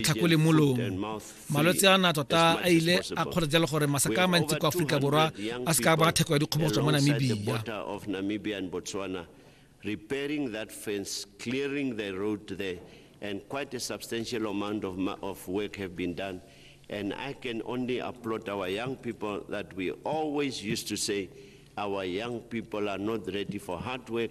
kgakolemolong malwetse a na tota a ile a kgoretse le gore masaka a mantsi kwa aforika borwa a se ka ba theko ya dikgobogotso mo namibia repairing that fence, clearing the road there, and quite a substantial amount of, of work have been done. And I can only applaud our young people that we always used to say, our young people are not ready for hard work,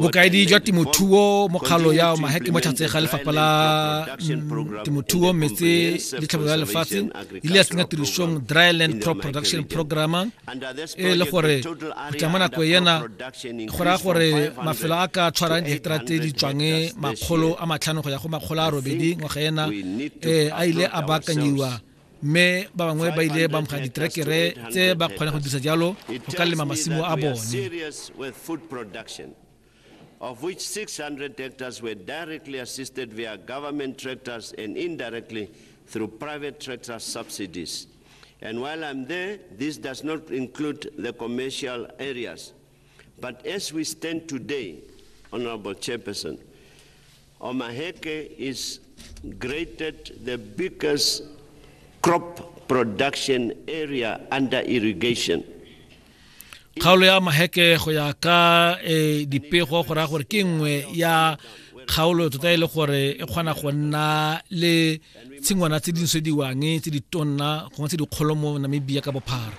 bokaedi jwa temothuo mokgalo ya maheke mo tlhatse ga lefapha la mm, temothuo metse le tlhabolo ya lefatshe ile ya tsenya tirisong dry land crop production program e le gore go tla mo nako ena go raya gore mafelo a ka tshwarang diheketara tse di tswang makgolo a matlhano go ya go makgolo a robedi ngwaga ena um a ile a baakanyiwa mme ba bangwe ba ile ba amogela diterekere tse ba kgona go dirisa jalo go ka lema masimo a bone of which 600 hectares were directly assisted via government tractors and indirectly through private tractor subsidies. And while I'm there, this does not include the commercial areas. But as we stand today, Honorable Chairperson, Omaheke is graded the biggest crop production area under irrigation. kgaolo ya maheke go ya ka e, dipego go raya gore ke nngwe ya kgaolo tota e le gore e kgona go nna le tshingwana tse di nosediwang tse di tonna gongwe tse dikgolo mo namibia ka bophara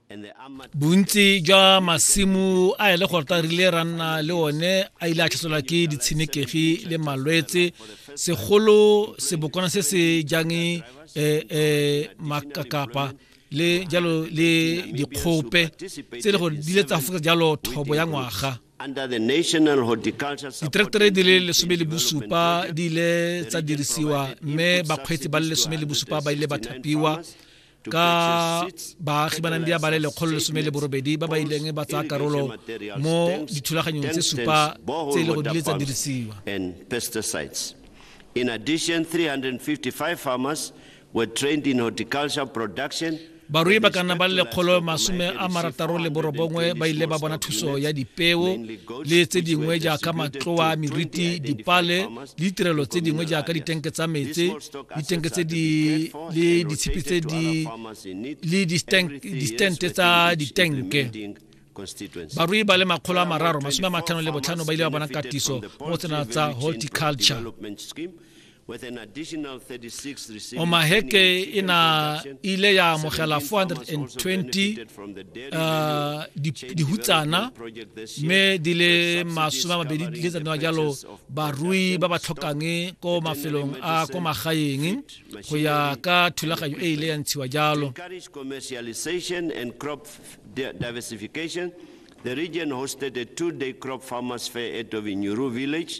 bontsi jwa masimo a e le gore ta rile ra nna le one a ile a tlhaselwa ke ditshenekegi le malwetse segolo sebokwana se se jang eh, eh, makakapa le jalo le dikgope tse e le gore di ile tsa fokotsa jalo thobo ya ngwaga Diterektere re di le lesome le bosupa di ile tsa dirisiwa mme bakgweetsi ba le lesome le bosupa ba ile ba thapiwa ka baagi ba nang di abale lekgolo lesome le borobedi ba ba ileng ba tsaya karolo mo dithulaganyong tse supa tse e le go dile tsa dirisiwa In addition, 355 farmers were trained in horticulture production barui ba ka nna ba le lekgolo masome a marataro le borobongwe ba ile ba bona thuso ya dipeo le tse dingwe jaaka matloa meriti dipale le ditirelo tse dingwe jaaka ditenke tsa metsi ditenke tse di le ditshipi tse di le distente tsa ditenke barui ba le makgolo a mararo masome a matlhano le botlhano ba ile ba bona katiso mo tsena tsa horticulture omaheke e na ile ya amogela 420 uh, dihutsana mme di le masome a mabedi di le tsatsa jalo barui ba ba tlhokang ko mafelong a ko magaeng go ya ka thulaganyo e ile ya ntshiwa jalo The region hosted a two-day crop farmers fair at Ovinyuru village